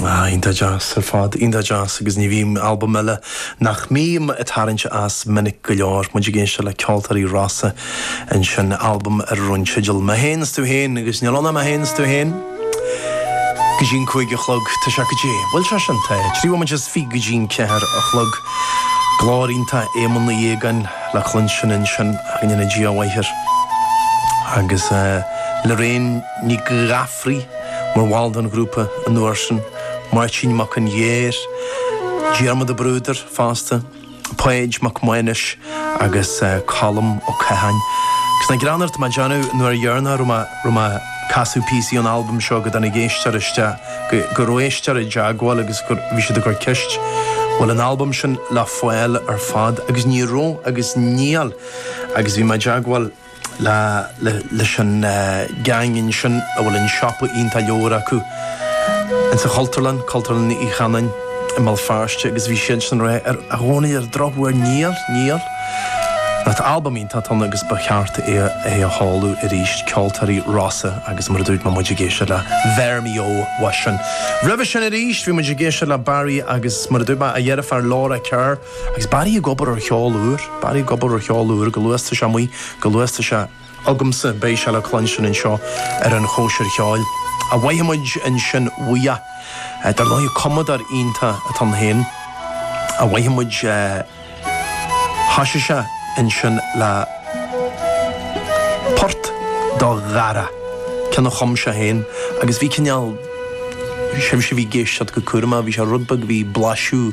Ah, iontach deas ar fad, iontach deas agus ní bhím, albam eile nach mbím ag tarraingt as minic go leor, muid ag éisteacht le Ceoltóirí Rossa ansin, albam ar a raibh an teideal Mé Féin is Tú Féin agus níl ann ach mé féin is tú féin go dtí an cúig a chlog, tá sé cad é, bhuel sé sin té, trí bhomaite is fiche go dtí an ceathair a chlog. Glór iontach Éamoinn Uí Fhaogáin le cluinstin ansin, go ndéana Dia a mhaith air agus Lorraine Ní Ghadhra. Friel, mar bhall den ghrúpa an uair sin, Máirtín Mac an Ghirr, Diarmaid Ó Bruadair fosta, Páid Mac Maghnuis agus Colm Ó Catháin. Agus nach greannmhar, tá mé ag déanamh an uair dheireanach a raibh mé ag casadh píosaí ón albam seo go dtáinig éisteoir isteach go raibh éisteoir i dteagmháil agus bhí siad ag cur ceist, an bhfuil an albam sin le fáil ar fad agus ní raibh agus níl agus bhí mé i dteagmháil lá leis an gang ansin a bhfuil an siopa iontach leabhar acu in sa Chultúrlann, Cultúrlann Uí Chanáin i mBéal Feirste agus bhí siadsan ag rá, ara a Dhónaill, ar an drochuair níl, níl, ach albam iontach atá ann agus ba cheart é a sheoladh arís, ceoltóirí Rossa agus mar a dúirt mé muid ag éisteacht le Bheir mí ó uathu sin. Roimhe sin arís bhí muid ag éisteacht le Barry agus mar a dúirt mé a dheirfiúr Laura Kerr. Agus Barry ag obair ar cheol úr, Barry ag obair ar cheol úr, go luath, tá sé amuigh, go luath, tá sé agamsa, beidh sé le cluinstin anseo ar an Chóisir Cheoil. Mhoithigh muid ansin uaidh. Dar ndóigh, cumadóir iontach atá ann féin. Mhoithigh muid é, thosaigh sé ansin le port, an dara ceann a chum sé féin agus bhí cineál, sibhse a bhí ag éisteacht go cúramach, bhí sé rud beag, bhí blaiseadh,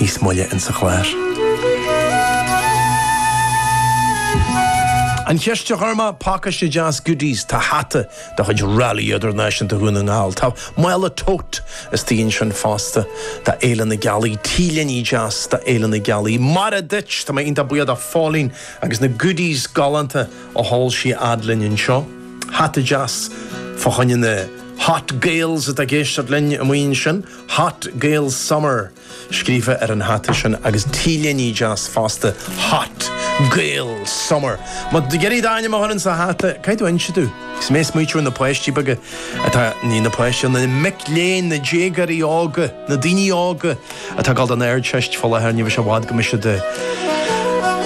níos moille insa chlár. An cheist a chuir mé, Pacáiste Deas Goodies, Tá hata de chuid Rally Idirnáisiúnta Dhún na nGall, tá mála Tote istigh ansin fosta, do Fhéile na Gealaí, T-léine deas do Fhéile na Gealaí. Mar a dúirt! Tá mé iontach buíoch do Phóilín agus na goodies galánta a sheol sí a fhad linn anseo. Hata deas fá choinne na Hot Gaels atá ag éisteacht linn amuigh ansin. Hot Gael Summer scríofa ar an hata sin agus t-léine deas fosta, Hot Gael Summer. Má tá tú ag iarraidh d'ainm a chur insa hata, caithfidh tú inse domh. Is mé ag smaoiteamh na páistí beaga atá, ní na páistí, na mic léinn, na déagóirí óga, na daoine óga atá ag dul don Ardteist fá láthair, ní bheidh sé i bhfad go mbeidh siad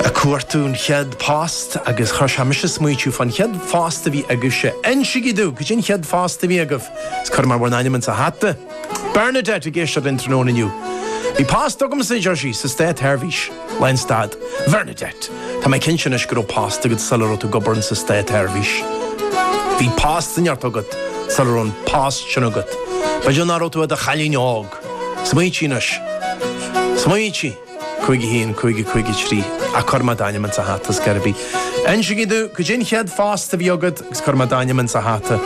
a' cuartú an chéad phost agus chuir sé mise a smaoiteamh fán chéad phost a bhí agaibhse. Insigí domh, cad é an chéad phost a bhí agaibh? Is cuireamar bhur n-ainm insa hata. Bernadette ag éisteacht linn tráthnóna inniu. Bhí post agamsa, a deir sí, sa Státseirbhís. Lá an stad. Bhernadette, tá mé cinnte anois go raibh post agat sula raibh tú ag obair insa Státseirbhís. Bhí post sa neart agat sula raibh an post sin agat. B'fhéidir nach raibh tú i do chailín óg. Smaointigh anois. Smaointigh. 51 50 53 Ach cuirfidh mé d'ainm insa hata, is gurb í. Insígí dom, cad é an chéad phost a bhí agat agus cuirfidh mé d'ainm insa hata.